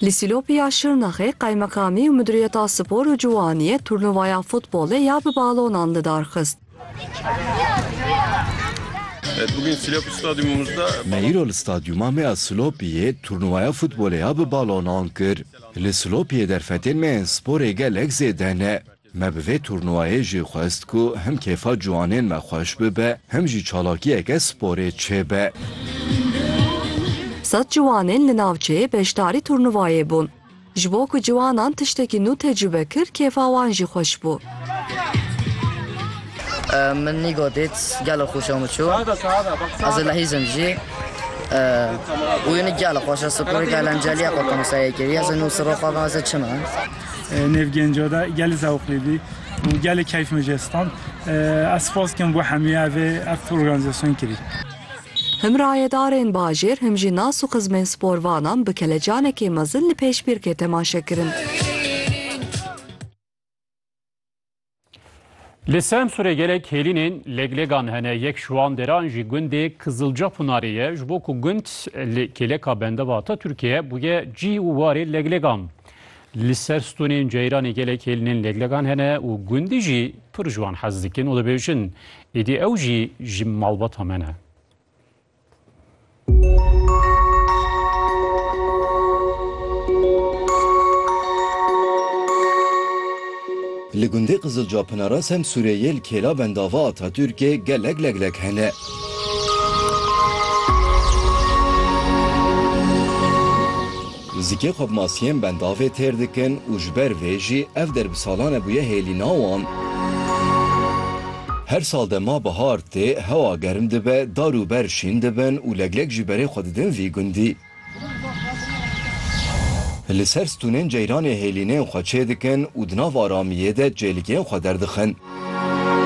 Li Sîlopî ya Şirnexê Qaymekamî û Miduriyeta Spor û Ciwaniyê turnuvaya futbolê ya bi balonan li dar xist. Me îro li Stadyuma me ya Silopiyê turnuvaya futbolê ya bi balonan kir. Li Silopiyê derfetên me yên sporê gelek zêde ne. Me bi vê turnûwayê jî xwest ku him kêfa ciwanên me xweş bibe, him jî çalakiyeke sporê çêbe. Sed ciwanên li navçeyê beşdarî turnûwayê bûn. Ji bo ku ciwanan tiştekî nû tecrûbe kir kêfa wan jî xweş bû. Min Nîgo dît gelo xweş û min çû. Ez ê lehîzim jî. Wî nî gelo xweş e sporêka elenceliya xwe tomsayê kiriye. Ez ê nû siro xwe bim ez ê çimin. Nêv genco de gelê zewqlî bî û gelê keyf min jê stand. Ez spas dikim bo hemî ev ê ev organîzasyon kirî. Him rayedarên bajêr him jî nas û xizmên sporvanan bi kelecanekê mezin li pêşbîrkê temaşe kirin. Li Semsûrê gelek hêlînên lêglegan hene, yek ji wan deran jî gundê Kizilca Pınarê ye. Ji bo ku gund li kêleka bendeva Atatürkê bûye cî û warê lêglegan. Li ser stonên Ceyranê gelek hêlînên lêglegan hene û gundî jî pir ji wan hez dikin û dibêjin êdî ew jî ji malbata me ne. Li gundê Qizilca Pinara Semsûrê yê li Kêla Bendava Atatûrkê gelek leglek hene. Zikê xwe bi masiyên bendavê têr dikin û ji ber vê jî ev der bi salan e bûye hêlîna wan. Her sal dema bihar tê, hewa germ dibe, dar û ber şîn dibin û leglek jî berê xwe didin vî gundî. Li ser stûnên ceyranê hêlînên xwe çêdikin û di nav aramiyê de çêlikên xwe derdixin.